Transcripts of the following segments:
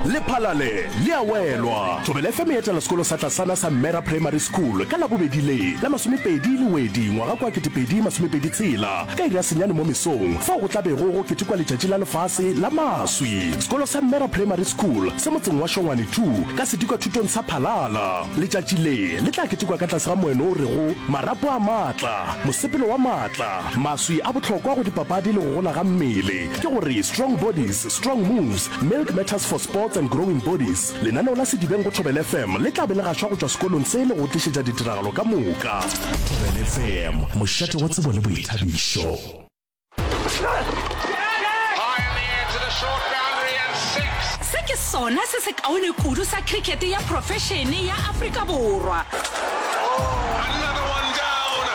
lephalale le a welwa thobela fm e etela sekolo sa tlasana sa mmera primary school ka labobedi le la masomepedi le wedi ngwaga kwa 2026 ka iri ya senyane mo mesong fao go tlabego go ketekwa letšatši la lefase la maswi sekolo sa mmera primary school se motseng wa šongwane 2 ka sedikwa thutong sa phalala letšatši le le tla ketekwa ka tlase ga moeno o rego marapo a maatla mosepelo wa maatla maswi a bohlokwa go dipapadi le go gola ga mmele Ke go re, Strong Bodies, Strong Moves, Milk Matters for Sports and Growing Bodies, lenaneo la Sedibeng go Thobela FM le tla be le gašwa go tšwa sekolong se le go tlišetša ditiragalo ka moka. Thobela FM, mošate wa tsebo le boithabišo. Se ke sona se sekaone kudu sa cricket ya profešene ya Afrika Borwa.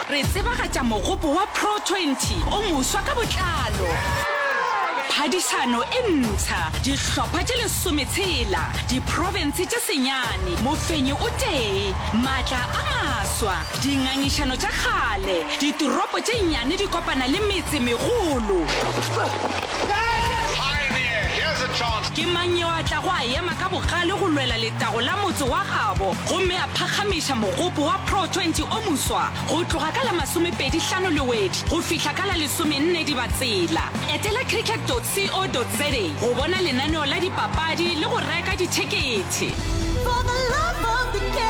Re tsebagatša mogopo wa Pro Twenty o moswa ka botlalo. Phadišano e ntšha, dihlopha tše lesome tshela, diprofense tše senyane, mofenyi o tee, maatla a maswa, dingangišano tša kgale, ditoropo tše nnyane di kopana le metse megolo. Ke mang yo a tlago a ema ka bogale go lwela letago la motse wa gabo? gomme a phakgamiša mogopo wa Pro 20 o moswa go tloga ka la masomepedi hlano Lewedi go fihla ka la lesomenne Dibatsela. Etela cricket dot co dot za go bona lenaneo la dipapadi le go reka dithekethe. For the love of the game.